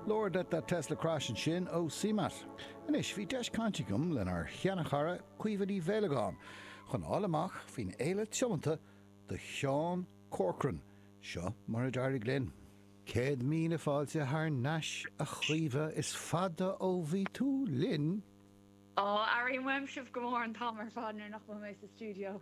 Lord, let that Tesla crash ansin ó Seamatt. Anois, bhí deis cainte agam lenár sheanchara Caoimhe Ní Mhaolagáin chun fáil amach faoin fhéile tiomanta do Sheán Corcoran. Seo mar a d'éirigh linn. Céad míle fáilte thar n-ais, a Chaoimhe, is fada ó bhí tú linn! Ó, airím uaim sibh go mór an t-am ar fad nuair nach bhfuil mé sa stiúideo!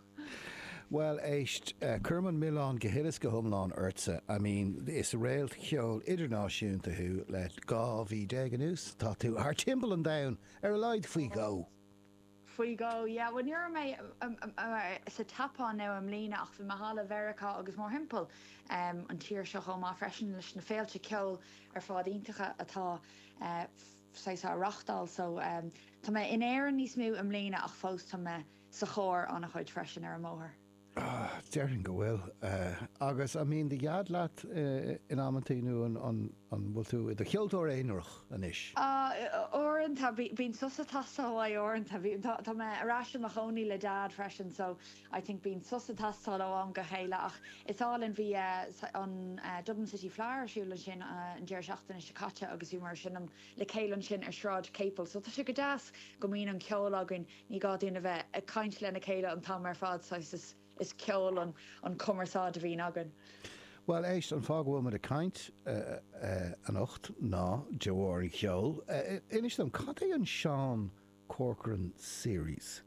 Bhuel, éist, cuirim an milleán go huile is go hiomlán ortsa. I mean, is réalt cheoil idirnáisiúnta thú le 12 mhí anuas, tá tú thar timpeall an domhain, ar a laghad faoi dhó! Faoi dhó, yeah. Bhuel, ní raibh mé sa tSeapáin, now, i mbliana ach bhí mé thall i Meiriceá agus mórthimpeall an tír seo chomh maith freisin leis na féilte ceoil ar fad iontacha atá. sé á reachtáil. So, tá mé in Éirinn níos mó i mbliana ach fós tá mé sa charr an-chuid freisin ar an mbóthar. Ah, déarfainn go bhfuil. Agus an mbíonn do dhaid leat in amantaí nó an bhfuil tú i do cheoltóir aonarach anois? Ah, uaireanta, bíonn sos ag teastáil uaidh uaireanta. Tá mé ar ais i mo chónaí le Dad freisin so I think bíonn sos ag teastáil ó am go chéile ach is álainn, bhí an Dublin City Fleadh ar siúl ansin an deireadh seachtaine seo caite agus bhíomar ansin le chéile ansin ar Shráid Capel so tá sé go deas go mbíonn an ceol againn, ní gá dúinn a bheith ag caint lena chéile an t-am ar fad saghas, is ceol an chumarsáid a bhíonn againn. Bhuel éist, an fáth go bhfuil muid ag caint anocht ná de bharr an cheoil. Inis dom, cad é an Sean Corcoran Series?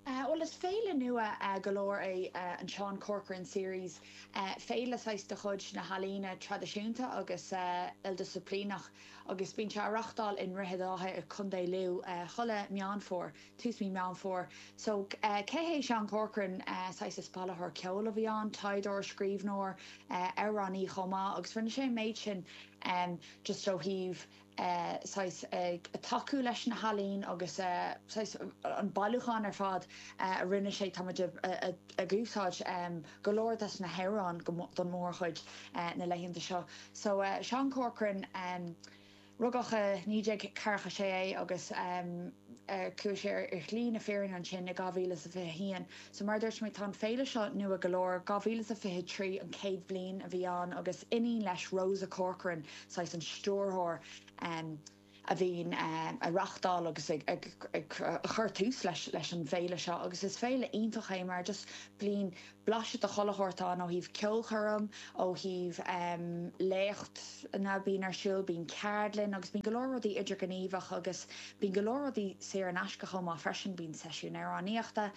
Bhuel, is féile nua go leor é an Sean Corcoran Series, féile saghas de chuid na n-ealaíon traidisiúnta agus ildisciplíneach agus bíonn sé á reachtáil i nDroichead Átha i Co. Lú chuile Meán Fómhair, tús mí Meán Fómhair. So, cé hé Sean Corcoran? Saghas is bailitheoir ceoil a bhí ann, taighdeoir, scríbhneoir, amhránaí chomh maith agus rinne sé an méid sin just ó thaobh, saghas, ag tacú leis na healaíona agus saghas, an bailiúchán ar fad a rinne sé, tá muid ag úsáid go leor des na hamhráin go, don mórchuid, na laethanta seo. So, Seán Corcoran, rugadh i naoi déag ceathracha sé é agus. chuaigh sé ar shlí na fírinne ansin i 2021. So mar a dúirt mé, tá an féile seo nua go leor, 2023 an chéad bhliain a bhí ann agus iníon leis, Rosa Corcoran, saghas an stiúrthóir em a bhíonn em á reachtáil agus ag ag ag a chuir tús leis leis an bhféile seo agus is féile iontach é mar just bíonn blaiseadh de chuile shórt ann ó thaobh ceolchoirm, ó thaobh léachtanna a bhíonn ar siúl, bíonn ceardlann agus bíonn go leor rudaí idirghníomhach agus bíonn go leor rudaí saor in aisce chomh maith freisin, bíonn seisiúin amhránaíochta,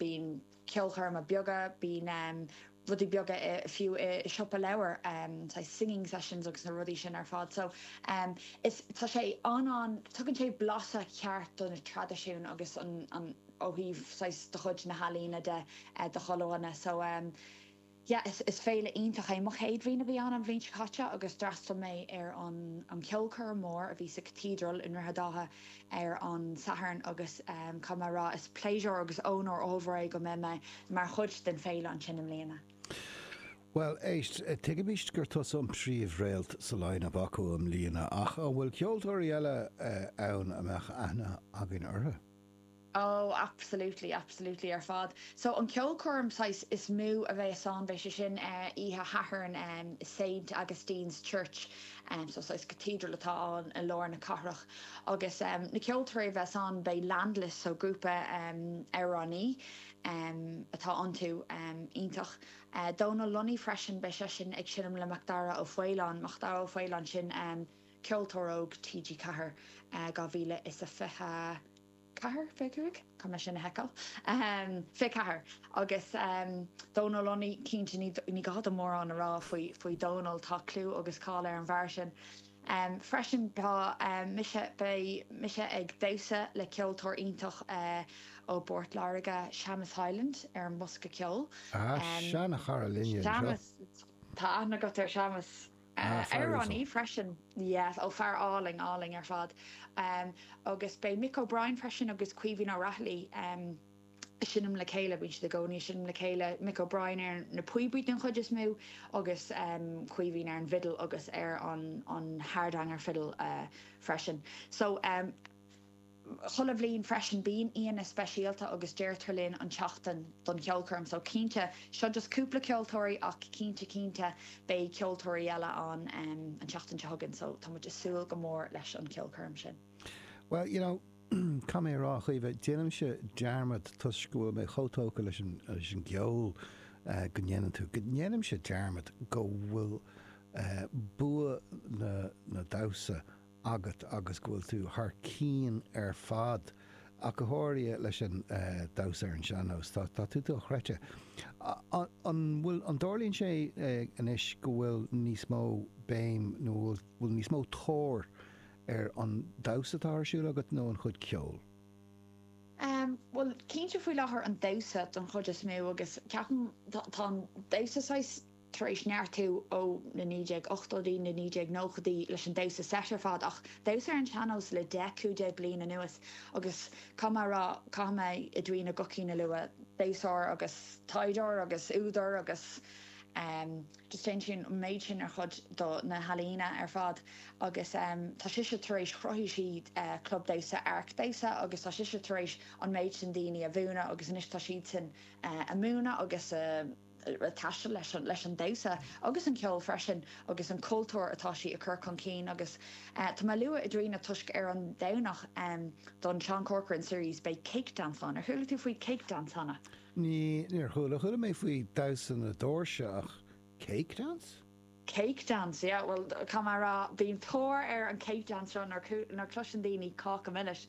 bíonn ceolchoirme beaga, bíonn rudaí beaga fiú i siopa leabhar, saghas singing sessions agus na rudaí sin ar fad so is, tá sé an-an, tugann sé blaiseadh ceart do na traidisiúin agus an. ó thaobh saghas de chuid na healaíne de do cheardlanna. So yeah is féile iontach é. Mo chéad bhliain a bhí ann an bhliain seo caite agus d'fhreastail mé ar an an cheolchoirm mór a bhí sa Cathedral i nDroichead Átha ar an Satharn agus caithfidh mé a rá is pléisiúr agus ónóir ollmhór é go mbeidh mé mar chuid den féile ansin i mbliana. Bhuel éist, tuigimist gur tusa an príomh-réalt sa line-up acu i mbliana ach an bhfuil ceoltóirí eile ann a mbeadh aithne againn orthu? Ó, absolutely, absolutely ar fad. So an ceolchoirm saghas is mó a bheas ann, beidh sé sin eh oíche Shathairn em i Saint Augustine's Church em so saghas cathedral atá ann i lár na cathrach agus em na ceoltóirí a bheas ann beidh Landless so grúpa em amhránaithe em atá iontu em iontach eh Dónal Lunny freisin beidh seisean ag seinm le Macdara Ó Faoláin, Macdara Ó Faoláin sin em. Ceoltóir Óg TG4 2024, 25? Caithfidh mé sin a sheiceáil. 24. Agus Dónal Lunny, cinnte ní gá dom mórán a rá faoi Dhónal, tá clú agus cáil ar an bhfear sin. Freisin tá mise, beidh mise ag damhsa le ceoltóir iontach ó bPort Láirge, Séamas Hyland, ar an mbosca ceoil. Ah, seana chara linne anseo. Séamas, tá aithne agat ar Shéamas. Ah, fear uasal. Amhránaí freisin. Yeah, ó fear álainn, álainn ar fad. Em, agus beidh Mick O'Brien freisin agus Caoimhín Ó Raghallaigh, em, ag seinm le chéile, bíonn siad i gcónaí ag seinm le chéile, Mick O'Brien ar na píobaí den chuid is mó agus, em, Caoimhín ar an bhfidil agus ar an, an hardanger fiddle, eh, freisin. So, em. chuile bhliain freisin bíonn aíonna speisialta agus deirtear linn an tseachtain don cheolchoirm so cinnte, seo just cúpla ceoltóirí ach cinnte cinnte beidh ceoltóirí eile ann an tseachtain seo chugainn so tá muid a' súil go mór leis an cheolchoirm sin. Bhuel, you know, caithfidh mé a rá, a Chaoimhe, déanaimse dearmad toisc go bhfuil mé chomh tógtha leis an, leis an gceol go ndéanann tú, go ndéanaimse dearmad go bhfuil bua na, na damhsa agat agus go bhfuil tú thar cinn ar fad, ach go háirithe leis an damhsa ar an sean-nós. Tá tá tú dochreidte. An bhfuil, an dtarlaíonn sé anois go bhfuil níos mó béim nó bhfuil bhfuil níos mó tóir ar an damhsa atá ar siúl agat nó an chuid ceoil? Bhuel, cinnte faoi láthair an damhsa don chuid is mó agus ceapaim tá tá an damhsa saghas, tar éis neartú ó na 1980idí, na 1990idí leis an damhsa seit ar fad ach damhsa ar an sean-nós le deich, cúig déag bliain anuas agus caithfidh mé a rá, caithfidh mé Edwina Guckian a lua, damhsóir agus taighdeoir agus údar agus em just déanann sí an méid sin ar chuid de na healaíona ar fad agus em tá sise tar éis, chruthaigh sí eh club damhsa, Áirc Damhsa agus tá sise tar éis an méid sin daoine a mhúineadh agus anois tá siadsan eh ag múineadh agus ag taisteal, leis an damhsa agus an ceol freisin agus an cultúr atá sí ag cur chun cinn agus tá mé ag lua Edwina toisc ar an Domhnach don Seán Corcoran Series beidh Cake Dance ann. Ar chuala tú faoi Cake Dance cheana? Níor chuala. Chuala mé faoi Damhsa na Doirse ach Cake Dance? Cake dance, yeah, bhuel, caithfidh mé a rá, bíonn tóir ar an cake dance seo, nuair, nuair chloiseann daoine Cáca Milis,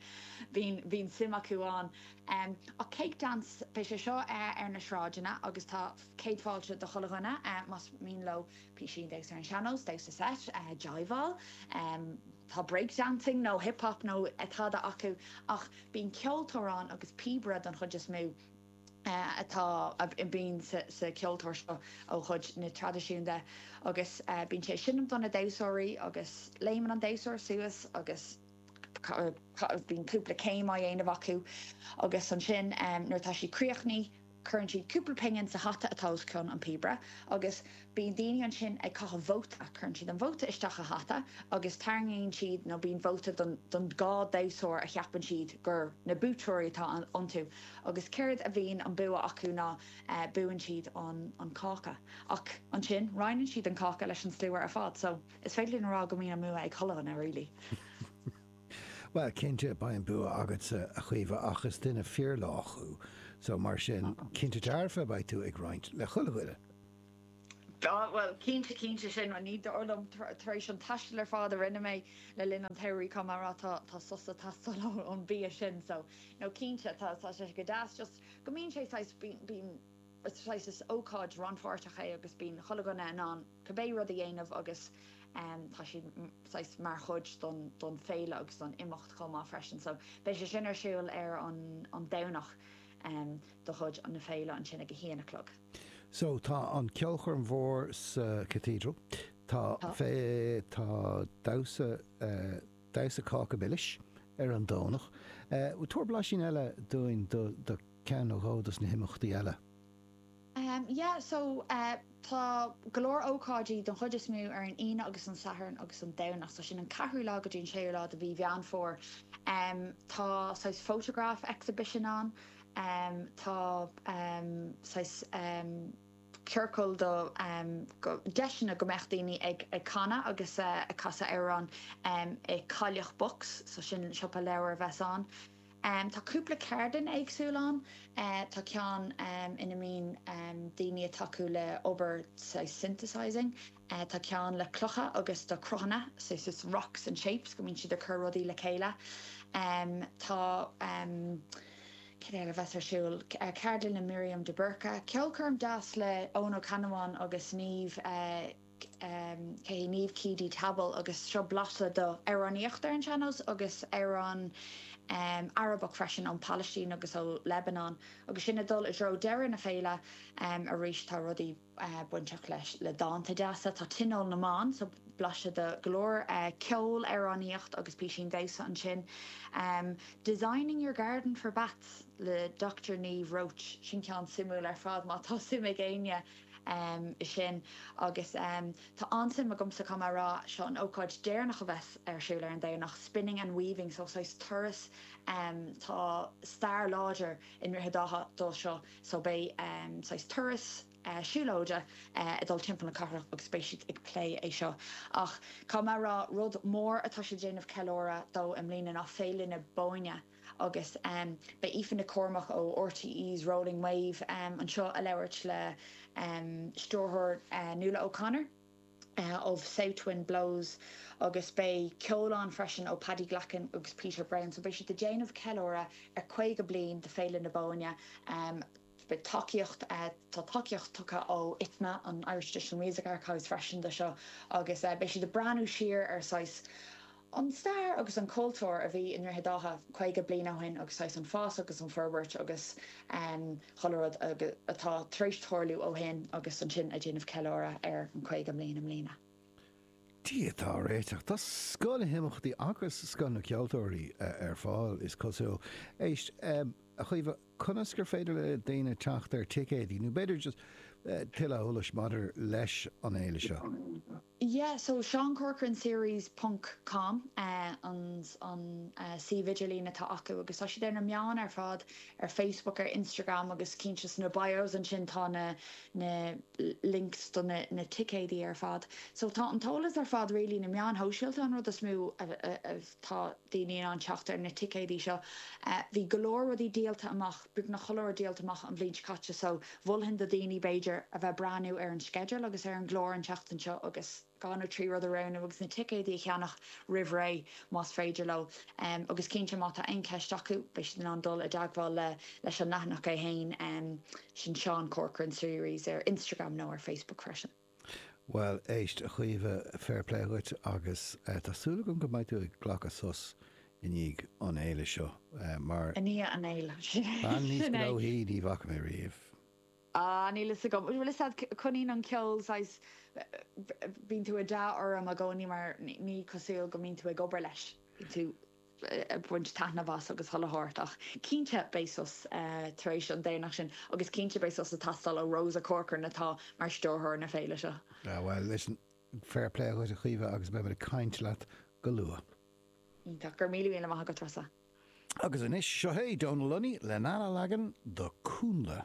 bíonn, bíonn suim acu ann. Em, ach cake dance, beidh sé seo eh ar na sráideanna agus tá céad fáilte do chuile dhuine eh más mian leo písín damhsa ar an sean-nós, damhsa seit, eh jiveáil, em tá break dancing nó hip hop nó eh tada acu ach bíonn ceoltóir ann agus píobaire don chuid is mó. atá, a bhíonn sa cheoltóir seo ó chuid na traidisiún de agus bíonn sé ag seinm do na damhsóirí agus léimeann an damhsóir suas agus bíonn cúpla céim á dhéanamh acu agus ansin nuair atá siad críochnaithe cuireann siad cúpla pingin sa hata atá os cionn an píobaire agus Bíonn daoine ansin ag caitheamh vóta, cuireann siad an vóta isteach sa hata agus tarraingíonn siad nó bíonn vóta don don dhá damhsóir a cheapann siad gur na buaiteoirí atá iontu agus céard a bhíonn an bua acu ná buann siad an an cáca ach ansin roinneann siad an cáca leis an slua ar fad so is féidir linn a rá go mbíonn an bua ag chuile dhuine really. Bhuel cinnte beidh an bua agatsa a Chaoimhe ach is duine fíor lách thú so mar sin cinnte dearfa beidh tú ag roinnt le chuile dhuine. Á, bhuel, cinnte, cinnte, sin rud ní dóigh liom tar éis an taistil ar fad a rinne mé le linn an tsamhraidh caithfidh mé a rá tá tá sos ag teastáil ón mbia sin so no cinnte tá tá sé go deas just go mbíonn sé saghas bíonn bíonn saghas is ócáid rannpháirteach é agus bíonn chuile dhuine in ann cibé rud a dhéanamh agus em tá siad saghas mar chuid don don féile agus don imeacht chomh maith freisin so beidh sé sin ar siúl ar an an Domhnach em de chuid na féile ansin ag a haon a chlog. So, tá an ceolchoirm mhór sa Cathedral. Tá Tá. fé, tá damhsa, damhsa cáca milis ar an Domhnach. Tabhair blaisín eile dúinn do do ceann nó dhó dos na himeachtaí eile. Ahem, yeah, so, tá go leor ócáidí don chuid is mó ar an Aoine agus an Satharn agus an Domhnach. So, sin an ceathrú lá go dtí an séú lá de mhí Mheán Fómhair. Tá saghas photograph exhibition ann. um tá um saghas um ciorcal do um go deiseanna go mbeadh daoine ag ag canadh agus eh ag casadh amhrán um i Cailleach Books so sin siopa leabhar a bheas ann. Um tá cúpla ceardlann éagsúil ann eh tá ceann um ina mbíonn um daoine ag tacú le obair saghas synthesising. Tá ceann le clocha agus do cruthanna, so saghas rocks and shapes, go mbíonn siad ag cur rudaí le chéile. Tá, cad eile a bheas ar siúl, ceardlann le Miriam de Búrca, ceolchoirm deas le Eoin Ó Ceannabháin agus Niamh, cé hí, Niamh Keady-Tabbal agus seo blaiseadh do amhránaíocht ar an sean-nós agus amhrán Arabach freisin ón Palaistín agus ó Lebanon. Agus sinn ag dul i dtreo deireadh na féile arís tá rudaí. bainteach leis le dánta deasa. Tá Tionól na mBan so blaiseadh do go leor ceol, amhránaíocht agus písín damhsa ansin. Designing your garden for bats le Dochtúir Niamh Roche, sin ceann suimiúil ar fad má tá suim ag éinne i sin. Agus tá an-suim agamsa caithfidh mé a rá, seo an ócáid deireanach a bheas ar siúl ar an Domhnach, Spinning and Weaving so saghas turas tá stair láidir i nDroichead Átha do seo. So beidh saghas turas siúlóide ag dul timpeall na cathrach agus beidh siad ag plé é seo. Ach caithfidh mé a rá, rud mór atá siad ag déanamh ceiliúradh dó i mbliana ná Féile na Bóinne agus beidh Aoife Nic Cormaic ó RTÉ's Rolling Wave anseo ag labhairt le stiúrthóir Nuala O'Connor. ó South Wind Blows agus beidh ceol ann freisin ó Paddy Glackin agus Peter Browne so beidh siad ag déanamh ceiliúradh ar 50 bliain de Féile na Bóinne beidh tacaíocht tá tacaíocht tugtha ó ITMA, an Irish Traditional Music Archives freisin do seo agus beidh siad ag breathnú siar ar saghas an stair agus an cultúr a bhí i nDroichead Átha 50 bliain ó shin agus saghas an fás agus an forbairt agus chuile rud atá tar éis tarlú ó shin agus ansin ag déanamh ceiliúradh ar an 50 mbliain i mbliana. Dia dár réiteach. Tá scoth na himeachtaí agus scoth na ceoltóirí ar fáil, is cosúil. Éist, a Chaoimhe, conas gur féidir le daoine teacht ar ticéidí nó b'fhéidir just tuilleadh eolais maidir leis an fhéile seo? yeah so Sean Corcoran Series ponc com an an suíomh idirlín atá acu agus tá siad ar na meáin ar fad ar Facebook ar Instagram agus cinnte insna bios ansin tá na na links do na na ticéidí ar fad so tá an t-eolas ar fad really ar na meáin shóisialta an rud is mó a a tá daoine in ann teacht ar na ticéidí seo bhí go leor rudaí díolta amach beagnach an clár díolta amach an bhliain seo caite so mholfainn do dhaoine, b'fhéidir, a bheith ag breathnú ar an sceideal agus ar an gclár an tseachtain seo agus. dhá nó trí rud a roghnú agus na ticéidí a cheannach roimh ré más féidir leo agus cinnte má tá aon cheist acu beidh siad in ann dul i dteagmháil le leis an leathanach é fhéin, sin Sean Corcoran Series ar Instagram nó ar Facebook freisin. Bhuel, éist, a Chaoimhe, fair play dhuit agus tá súil agam go mbeidh tú ag glacadh sos i ndiaidh an fhéile seo mar, I ndiaidh an fhéile, bean níos gnóthaí ní bhfaca mé riamh. Ah, níl a fhios agam, bhuel, is ea, coinníonn an ceol, saghas, bíonn tú i d'awe orm i gcónaí mar ní cosúil go mbíonn tú ag obair leis, bíonn tú. baint taitneamh as agus chuile shórt ach cinnte beidh sos tar éis an deireadh seachtaine agus cinnte beidh sos ag teastáil ó Rossa Corcoran atá mar stiúrthóir na féile seo. Ah bhuel, listen, fair play dhuit a Chaoimhe agus beimid ag caint leat go luath. Iontach. Go raibh míle míle maith agat a Treasa. Agus anois, seo é Donal Lunny lena leagan de Cúnla.